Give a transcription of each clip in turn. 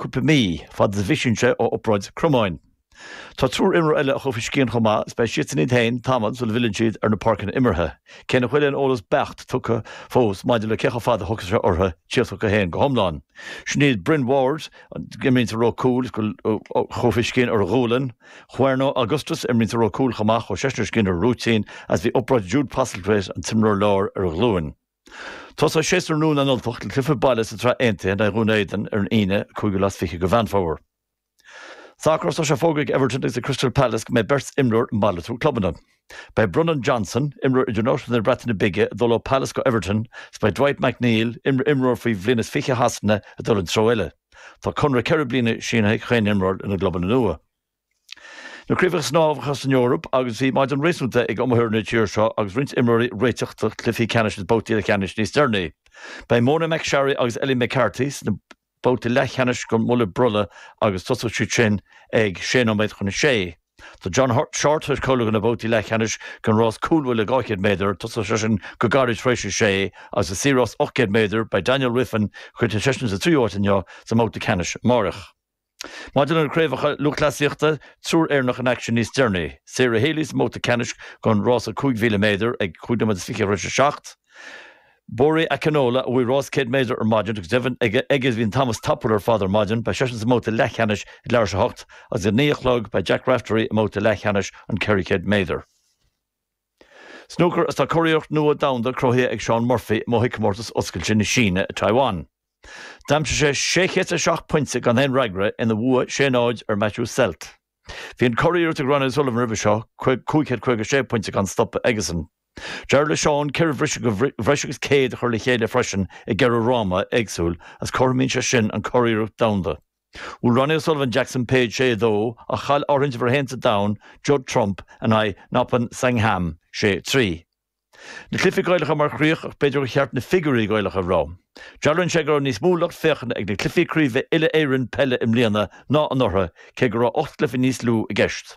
cúpla mí, fad is a bhisíonn sé ó obráid cromáin. Tá triúr imreoir eile a chuaigh faoi scian chomh maith is beidh siadsan iad féin tamall sula bhfilleann siad ar na páirceanna imeartha, cé nach bhfuil aon eolas beacht tugtha fós maidir le cé chomh fada a thógfaidh sé orthu tíocht chucu féin go hiomlán. Sin iad Bryn Ward, a imríonn sa ró cúil, is a chuaigh faoi scian ar a ghualainn, Juarno Augustus, a imríonn sa ró cúil chomh maith, chuaigh seisean faoi scian ar a rúitín agus bhí obráid ag Jude Postlethwaite, an t-imreoir láir, ar a ghlúin. Tosóidh séasúr nua na nUltach le cluiche baile sa tSraith Aontaithe in aghaidh Dhún Éideann ar an Aoine an 5ú lá is 20 de Mheán Fómhair. Sacar Tá sé fógartha ag Everton agus ag Crystal Palace go mbeidh beirt imreoir ag malartú clubanna. Beidh Brennan Johnson, imreoir idirnáisiúnta na Breataine Bige, ag dul ó Palace go Everton agus beidh Dwight McNeil, imreoir faoi bhliain is fiche Shasana, ag dul an treo eile. Tá conradh ceithre bliana sínithe ag chaon imreoir lena gclubanna nua. Na craobhacha snámha san Eoraip agus bhí maidin réasúnta ag iomaitheoirí na tíre seo agus roinnt imreoirí ag réiteach do chluichí ceannais agus babhtaí leathcheannais níos deireanaí. Beidh Mona McSharry agus Ellie McCartney sna babhtaí leathcheannais den mbuille brollaigh agus tosóidh siad sin ag sé nóiméad chun a sé. Tá John Shortt cáilithe do na babhtaí leathcheannais den rás cúlbhuille 200 méadar, tosóidh seisean go gairid tar éis a sé, agus i saor-rás 800 méadar beidh Daniel Wiffen, chríochnaigh seisean sa tríú háit inniu, sa mbabhta ceannais amárach. Maidir le Craobhacha Lúthchleasaíochta, triúr Éireannach in aicsean níos deireanaí, Sarah Healy sa mbabhta ceannais den rása 5,000 méadar ag 5 nóiméad is 20 tar éis a seacht, Bori Akinola a bhuaigh rás 100 méadar ar maidin agus deimhin aige a bhí an t-am is tapúla ar fad ar maidin, beidh seisean sa mbabhta leathcheannais ag leathuair tar éis a hocht, agus ag a naoi a chlog beidh Jack Raftery i mbabhta leathcheannais an 400 méadar. Snúcar Tá curiarracht nua domhanda cruthaithe ag Shaun Murphy i mbua sa Chomórtas Oscailte na Síne i Taiyuan. D'aimsigh sé 607 pointe gan aon fhreagra ina bhua 6 0 ar Matthew Selt. Bhí an curiarracht ag Ronnie O'Sullivan roimhe seo, 556 pointe gan stopadh aigesan. D'éirigh le Shaun ceithre bhriseadh de bhreis agus céad a chur le chéile freisin i gceithre fhráma éagsúil agus cothromíonn sé sin an curiarracht domhanda. Bhuail Ronnie O'Sullivan Jackson Page 6 2, ach chaill ardhuint uimhir 1 sa domhan, Judd Trump, in aghaidh Noppon Saengkham 6 3. Na cluichí Gaelacha mar chríoch ach b'fhéidir gur cheart na figiúirí Gaelacha a rá. Dealraíonn sé go raibh níos mó lucht féachana ag na cluichí craoibhe uile-Éireann peile i mbliana ná anuraidh, cé go raibh ocht gcluiche níos lú i gceist.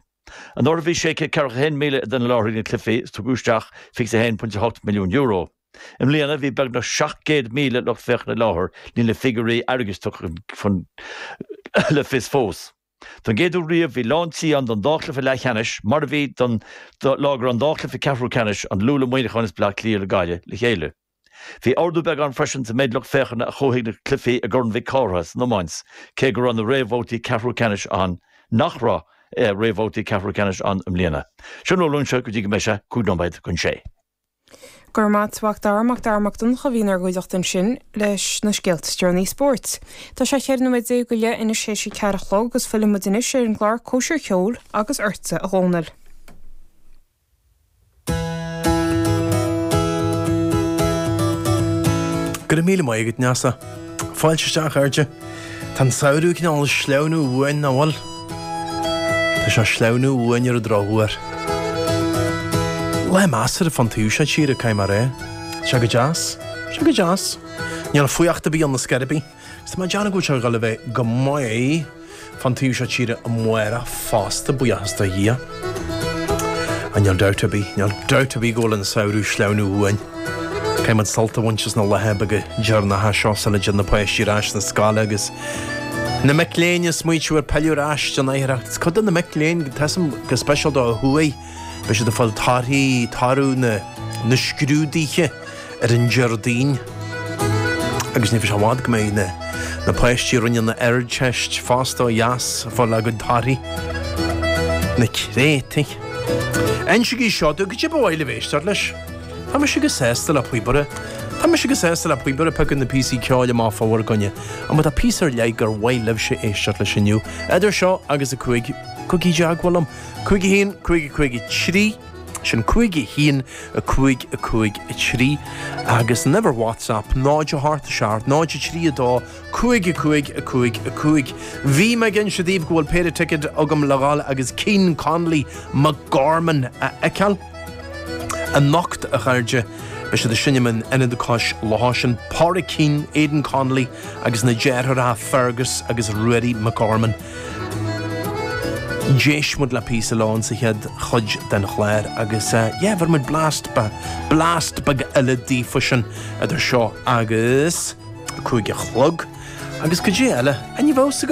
Anuraidh bhí 641,000 duine i láthair ag na cluichí is tugadh isteach €21.8 milliún. I mbliana, bhí beagnach 700,000 lucht féachana i láthair, níl na figiúirí airgid tugtha chun le fios fós. Don gcéad uair riamh, bhí lán tí ann don dá chluiche leathcheannais, mar a bhí don lá go raibh an dá chluiche ceathrú ceannais, An Lú le Muineachán is Bleá Cliath le Gaillimh, le chéile. Bhí ardú beag ann freisin sa méid lucht féachana a chuaigh chuig na cluichí i gCorn Mhic Cárthaigh san iomáint, cé go raibh na réamhbhabhtaí ceathrú ceannais ann nach raibh réamhbhabhtaí ceathrú ceannais ann i mbliana. Sin a bhfuil uaimse go dtí go mbeidh sé cúig nóiméad chun sé. Go raibh maith agat a Mhac Dara Mac Dara Mac Donncha a bhí inár gcuideachta ansin leis na scéalta is deireanaí spóirt. Tá sé cheithre nóiméad déag go leith anois théis a ceathair a chlog agus fillfidh muid anois ar an gclár Cóisir Cheoil agus ortsa a Dhónaill. Go raibh míle maith agat, Neasa. Fáilte isteach, a chairde. Tá an samhradh ag cineál sleamhnú uainn, nach bhfuil? Tá sé ag sleamhnú uainn ar an drochuair. Lá measartha fán taobh seo tíre, caithfidh mé a rá. Tá sé go deas. Tá sé go deas. Níl fuacht ar bith ann, ná scairbí. Agus tá mé ag déanamh go bhfuil sé ag dhul a bheith go maith. Fán taobh seo tíre amárach fosta, buíochas do Dhia. Ach níl dabht ar bith, níl dabht ar bith go bhfuil an samhradh ag sleamhnú uainn. Caithfimid sult a bhaint as na laethe beaga deireanacha seo sula dtéann na páistí ar ais chun na scoile agus na mic léinn ag smaoitiú ar pilleadh ar ais den oidhreacht. Is cuid de na mic léinn, tá a fhios agam, go speisialta ó thuaidh, Beidh siad ag fáil torthaí toradh na scrúduithe ar an Déardaoin agus ní bheidh sé i bhfad go mbeidh na páistí a rinne an Ardteist fosta ó dheas ag fáil a gcuid torthaí. Na créatúir. Insígí seo domh, goidé ba mhaith libh éisteacht leis. Tá mise chomh sásta le píobaire. Tá mise chomh sásta le píobaire ag piocadh na píosaí ceoil amach fá bhur gcoinne. Ach má tá píosa ar leith gur mhaith libhse éisteacht leis inniu? Idir seo agus a cúig, gabhaigí i dteagmháil liom. Cúig a haon, cúig a cúig a trí. Sin cúig a haon, a cúig, a cúig a trí. Agus an uimhir WhatsApp 0 a hocht 6 a hocht 0 a trí a dó cúig a cúig a cúig a cúig. Bhí me ag inse daoibh go bhfuil péire ticket agam le ghabháil agus Keane, Connolly, McGorman a fheiceáil. Anocht, a chairde, beidh siad sin in Ionad Cois Locha, sin Pádraic Keane, Aidan Connolly agus na deartháireacha Fergus agus Ruairí McGorman. D'éist muid le píosa leo insa chéad chuid den chlár agus yeah, bhéarfaidh muid blast, blast beag eile daofa sin idir seo agus a cúig a chlog. Agus goidé eile, an raibh fhios agat?